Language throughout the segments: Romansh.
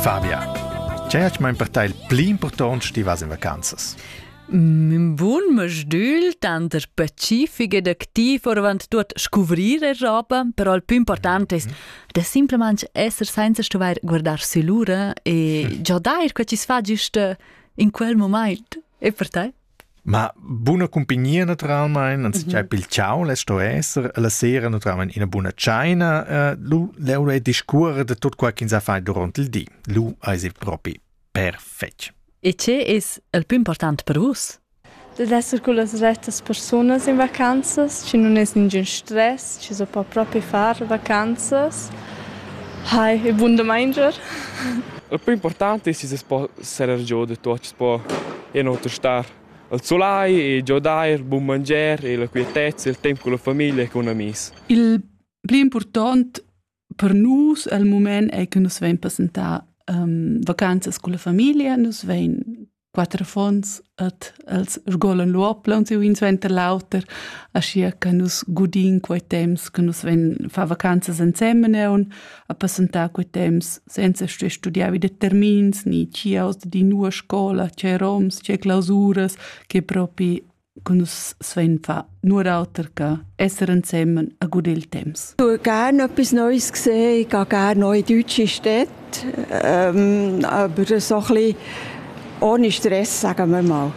Fabia, tgei hat mein per te il pli impurtont stivas in vacanzas? Mein bun mastügl tanter pacific ed activ orvant tuot scuvrir e roba, però il più important es da simplemente esser senza stuvair guardar sü l'ura e già dair quel chi s'fa giüst in quel moment. E per te? Ma buna cumpagnia naturalmein, anzitgei pil ciao less sto esser, e la sera naturalmein ina buna tscheina, eh, lu l'euro e discuore de tot quel ch'ins ha fai duront il di. Lu eis il propi perfetg. E che es il più important per vus? De esser con las retas personas in vacanzas, ci non es ningün stress, ci so po propi far vacanzas. Hai, e buon domenger. Il più importante è se si può serer giò da tuot chi's po e non oter star al sulai e giodair, bun manger e la quietezza, il temp cun la famiglia e cun amis. Il pli important per nus al mument è che nus vein passentar um, vacanzas con la famiglia, nus vein quattro fons et els sgolan l'uopla und un suenter l'auter, ascia che nus gudin quei temps che nus vein fa vacanzas insemmen e un a passentar quei temps senza stuer studiar vi determins ni chiaus da di nua scola, tgei roms, tgei clausuras, che propi con nus svein fa nur auter che esser insemmen a gut il temps. Ich tue gerne etwas Neues gesehen, ich gehe gerne noch in deutsche Städte, ähm, aber so ein bisschen ohne Stress, sagen wir mal.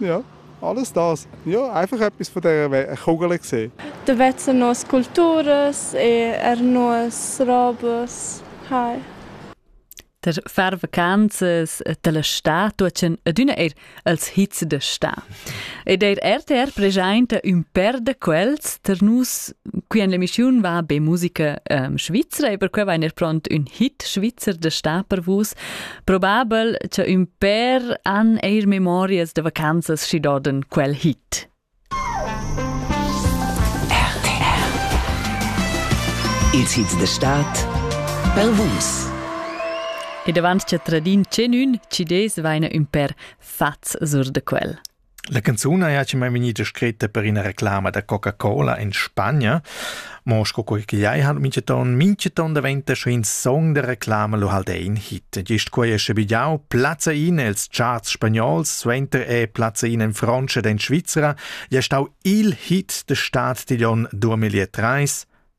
Ja, alles das. Ja, einfach etwas von dieser Kugel gesehen. Da vezzen nos culturas e er nos robes. Hi. Der fervacanzas della sta tuochen adüna eir als hits da sta. Ed eir RTR preschainta ün per da quels ter nus qui en l'emischiun va be musica ähm, svizzera e per que vain er pront ün hit svizzer da sta per vus. Probabel cha ün pêr han eir memorias da vacanzas schi dodan quel hit. Ils hits da stad pel Vus. E davant cha tradin tschenün, ci des vaina ün per fats sur da quel. La canzun haja chi m'ha vgnida scritta per üna reclama da Coca-Cola in Spagna, mo sco quei che jai han minchaton, minchaton daventa scho in song da reclama lu halt ein hit. Gist quei è sche bigliau plazza in els charts spagnols, suenter è plazza in in Francia ed in Svizzera, ja stau il hit de Stadt Tiglion 2030,